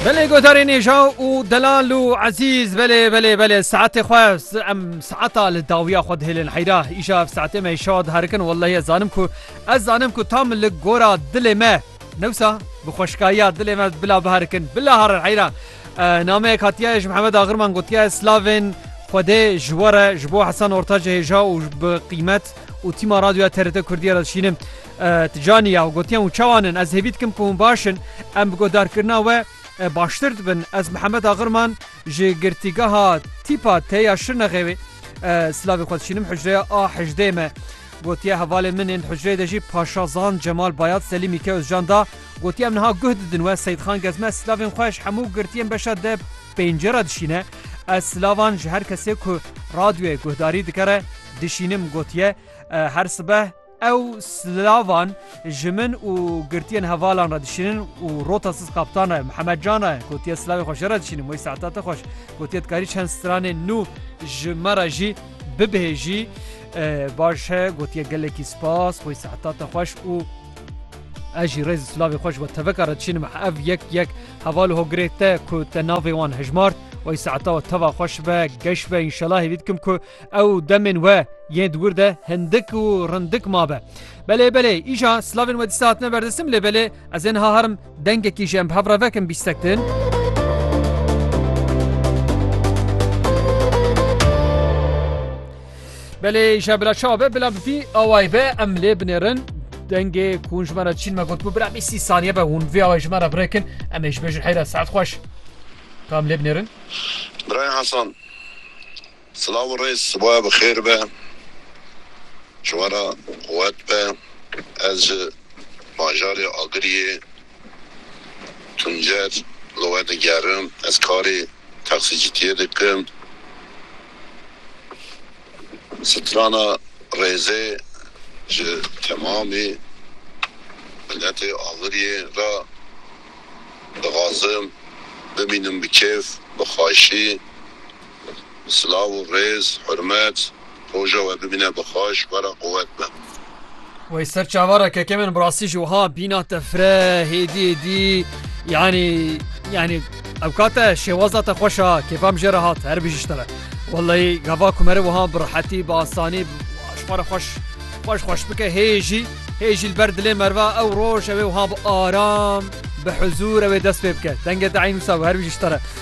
Belê godarê nêjaw û delal û ezîz belê belê belê saetê xwe em saeta li dawiya xwe dihêlin heyra îşa ev saetê me şa diherikin wellehî ez zanim ku ez zanim ku tam li gora dilê me newsa bi xweşkayiya dilê me bila biherikin bila harin heyra nameyek hatiye ji Mihemed Agirman gotiye slavên xwedê ji were ji bo Hesan Ortacê hêja û bi qîmet û tîma radyoya TRT Kurdiye re dişînim. Ti caniya û gotiyan û çawan in? Ez hêvî dikim ku hûn baş in. Em bi guhdarkirina we baştir dibin. Ez Mihemed Agirman ji Girtîgeha Tîpa T ya Şirnexê wê silavê xwe dişînim. Hucreya A hejdê me. Gotiya hevalên min ên di hucreyê de jî Paşazan Cemal Bayat Selî Mîke Ozcan da. Gotiya em niha guh didin we Seyîdxan Gezme silavên xwe ji hemû girtiyên beşa D pêncê re dişîne. Ez silavan ji her kesê ku radyoyê guhdarî dike re dişînim. Gotiye her sibeh. Ew silavan ji min û girtiyên hevalan re dişînin û rota siz kaptan re Mihemed Can re gotiye silavê xwe ji re dişînim wey saeta te xweş gotiye dikarî çend stranên nû ji me re jî bibêjî baş e gotiye gelekî spas wey saeta te xweş û ez jî rêzî silavê xweş we teveka re dişînim ev yek yek heval hogirê te ku te navê wan hejmart wey saeta we teva xweş be geş be înşela hêvî dikim ku Ew demên we yên di wir de hindik û rindik mabe. Belê belê îja slavên we dîsa hatine berdestim lê belê ez ê niha herim dengekî ji em bi hev re vekim bîstek din. Belê îja bila çawa be bila bipî awayê be em lê binêrin dengê ku hûn ji me re çîn me gotbû bila bî sî saniye be hûn vê awayê ji me re birêkin em ê ji bê jin heyra saet xweş tam lê binêrin. Birayê Hasan Silav û rêz, siboya bi xêr be, çiwara quwet be. Ez ji bajarê Agiriyê, Tuncer li we digerim. Ez karê texsicîtiyê dikim. Strana rêzê ji temamî miletê Agiriyê re dixwazim. Bimînim bi kêf, bi xweşî. Silav û rêz, hurmet, roja we bimîne bi xweş, were quwet be. Wey ser çava re keke min bi rastî ji wiha bîna te fre hêdî hêdî yanî yanî ew kate şêwaza te xweş a kêfa min jê re hat her bijî ji te ve. Welleyî gava ku mere wiha bi rehetî bi asanî ji xwe re xweş xweş xweş bike hê jî hê jî li ber dilê merve ew roj ew ê wiha bi aram bi huzûr ew ê dest pê bike. Dengê te eynûsa be her bijî ji te re.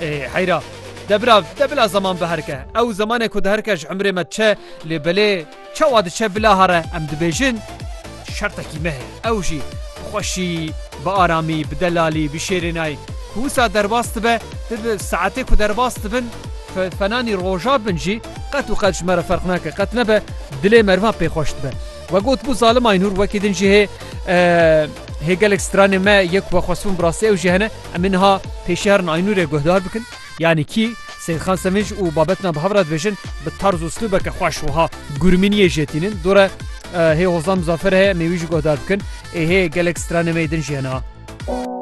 Ê heyra. De bira de bila zeman biherike. Ew zemanê ku diherike ji emrê me diçe lê belê çawa diçe bila here em dibêjin şertekî me heye. Ew jî bi xweşî, bi aramî, bi delalî, bi şêrênayî ku wisa derbas dibe tu bi saetê ku derbas dibin fenanî roja bin jî qet û qet ji me re ferq nake. Qet nebe dilê merivan pê xweş dibe. We gotibû zalim Aynur wekî din jî hê hê gelek stranên me yek wexwestibûn bi rastî ew jî hene. Em ê niha pê şehran Aynûrê guhdar bikin. Yanî kî, Seyîdxan Sevinc û Babetna bi hev re dibêjin bi tarz û slûbeke xweş wiha gurminiyê jê tînin, Dore hê Hozan Muzaffer heye em ê wî jî guhdar bikin, ê hê gelek stranê me yê din jî hene a.